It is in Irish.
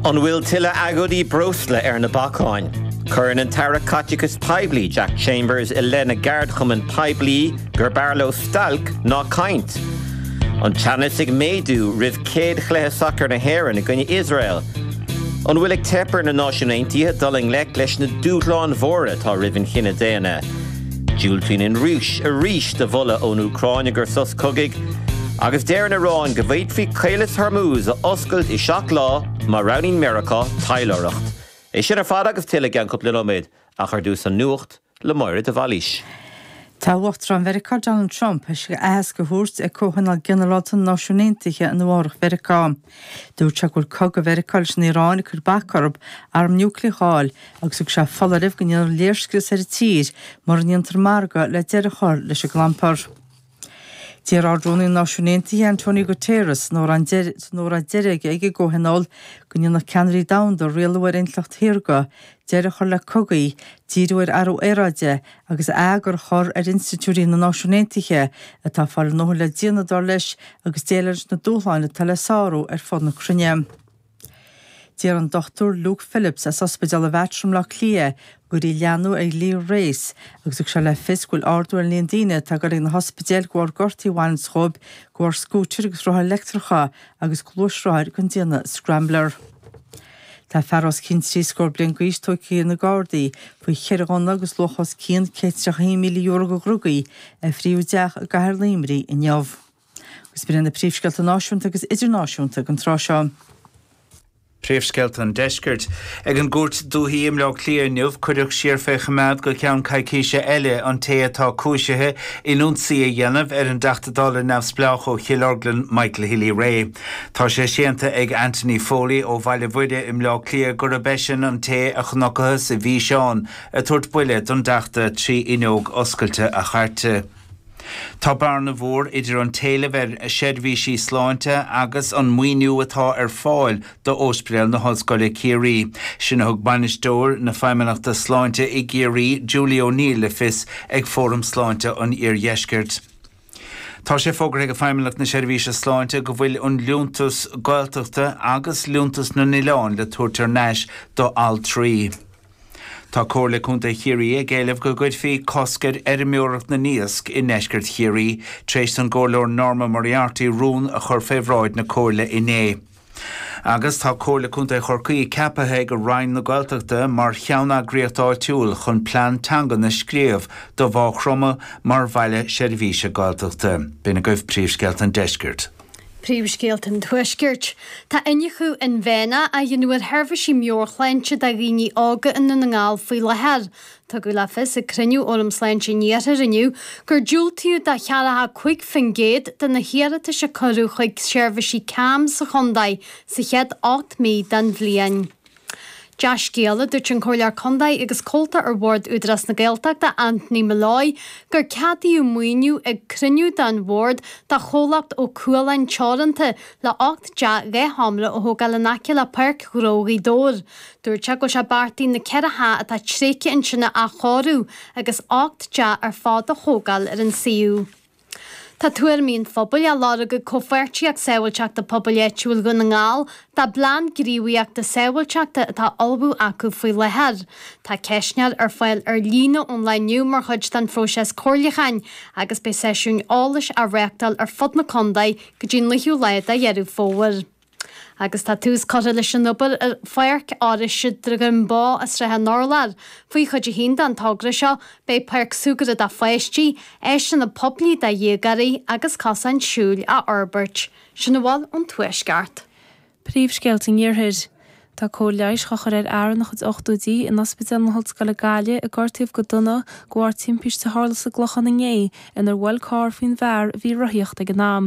An bhfuil tuilleadh agóidí breosla ar na bacáin? Cuireann an tAire Caiteachais Poiblí Jack Chambers i leith na gceardchumann poiblí gurbh fhearr leo stailc ná caint. An teannas ag méadú roimh céad chluiche sacair na hÉireann i gcoinne Iosrael. An bhfuil ag teip ar na Náisiúin Aontaithe dul i ngleic leis na dúshláin mhóra atá roimh an chine daonna? Diúltaíonn an Rúis arís do mholadh ón Úcráin i gcomhair sos cogaidh, agus deir an Iaráin go bhféadfaí Caolas Hormuz a oscailt i seacht lá má roghnaíonn Meiriceá taidhleoireacht. É sin ar fad agus tuilleadh i gceann cúpla nóiméad, ach ar dtús an nuacht le Máire de Bhailís. Tá Uachtarán Mheiriceá Donald Trump tar éis aitheasc a thabhairt ag Comhthionól Ginearálta na Náisiún Aontaithe in Nua-Eabhrac Mheiriceá. Dúirt sé go bhfuil cogadh Mheiriceá leis an Iaráin ag cur bac orthu arm niúcleach a fháil agus thug sé foláireamh go ndéanfar léirscrios ar an tír mura ndéantar margadh le deireadh a chur leis an gclampar. D'iarr Ard-Rúnaí na Náisiún Aontaithe, Antonio Guterres, san óráid deiridh aige ag an gcomhthionól, go ndéanfadh ceannairí domhanda rialú ar intleacht shaorga, deireadh a chur le cogaí, díriú ar athrú aeráide agus eagar a chur ar institiúidí na Náisiún Aontaithe atá fá na le déanamh dar leis agus déileáil leis na dúshláin atá le sárú ar fud na cruinne. D'iarr an Dr Luke Phillips as Ospidéal an Mhater i mBleá Cliath go gcuirfí leathnú ar Dhlí Grace agus thug sé le fios go bhfuil ardú ar an líon daoine atá ag goil ag na hospidéil de bharr gortaí a bhaineanns dhóibh de bharr scútair agus rothair leictreacha agus gluaisrothair den déanamh scrambler. Tá fear os cionn trí scór bliain d'aois tógtha ag na Gardaí faoi cheithre ghunna agus luach os cionn €131,000 de dhrugaí a fríothadh i dteach i gCathair Luimnigh inniu. Agus b'in na príomhscéalta náisiúnta agus idirnáisiúnta ag an tráth seo. Príomhscéalta an Deiscirt. Ag an gCúirt Dúiche i mBleá Cliath inniu, cuireadh siar fé choimeád go ceann coicíse eile an té atá cúisithe in ionsaí a dhéanamh ar an dTeachta Dála neamhspleách ó Chill Orglan Michael Healy-Rae. Tá sé séanta ag Anthony Foley ó Bhaile Mhuire i mBleá Cliath gurb eisean an té a chonacthas i bhfíseán ag tabhairt buille don dteachta trí fhuinneog oscailte a chairte. Tá bearna mhór idir an t-éileamh ar seirbhísí sláinte agus an maoiniú atá ar fáil do Ospidéal na hOllscoile Ciarraí, sin a thug Bainisteoir na Feidhmeannachta Sláinte i gCiarraí, Julie O'Neill le fios ag Fóram Sláinte an Iardheiscirt. Tá sé fógartha ag Feidhmeannacht na Seirbhíse Sláinte go bhfuil an liúntas Gaeltachta agus liúntas na n-oileán le tabhairt thar n-ais do altraí. Tá Comhairle Contae Chiarraí ag éileamh go gcuirfí cosc ar fheirmeoireacht na n-iasc i ndeisceart Chiarraí, tréis don gComhairleoir Norma Moriarty rún a chur fé bhráid na Comhairle inné. Agus tá Comhairle Contae Chorcaí ceapaithe ag Roinn na Gaeltachta mar cheanneagraíocht áitiúil chun plean teangan a scríobh do Mhá Chromtha mar Bhaile Seirbhíse Gaeltachta. B'in agaibh príomhscéalta an deiscirt. Príomhscéalta an tuaiscirt. Tá iniúchadh inmhéanach á dhéanamh ar sheirbhísí meabhairshláinte do dhaoine óga i nDún na nGall faoi láthair. Tugadh le fios ag cruinniú Fhóram Sláinte an Iarthair inniu gur diúltaíodh do 45% de na hiarratais a cuireadh chuig seirbhísí CAMHS sa chontae sa chéad ocht mí den bhliain. Dea-scéala, Dúirt an Comhairleoir Contae agus comhalta ar Bhord Údarás na Gaeltachta Anthony Molloy gur ceadaíodh maoiniú ag cruinniú den Bhord do chomhlacht Ó Cualáin Teoranta le 8 dteach dhésheomra a thógáil in aice le Páirc Ghnó Ghaoth Dobhair. Dúirt sé go bhfuil sé beartaithe na ceithre theach atá tréigthe ansin a athchóiriú agus ocht dteach ar fad a thógáil ar an suíomh. Tá tuairimí an phobail á lorg ag Comhpháirtíocht Sábháilteachta Pobail Áitiúil Dhún na nGall dá bplean gníomhaíochta sábháilteachta atá á ullmhú acu faoi láthair. Tá ceistneoir ar fáil ar líne ón lá inniu mar chuid den phróiseas comhairliúcháin agus beidh seisiúin eolais á reáchtáil ar fud na contae go dtí an 9ú lá de Dheireadh Fómhair. Agus tá tús curtha leis an obair ar Pháirc Áineasa Dhroim Bó i Srath an Urláir. Faoi Chuid 1 den togra seo beidh páirc súgartha do pháistí, áiseanna poiblí do dhéagóirí agus cosáin siúil á fhorbairt. Sin a bhfuil ón Tuaisceart. Príomhscéalta an Iarthair. Tá cóir leighis á chur ar fhear ina chuid ochtóidí in Ospidéal na hOllscoile Gaillimh a gortaíodh go dona de bharr timpiste a tharla sa gClochán inné inar bhuail carr faoin bhfear a bhí ag rothaíocht ag an am.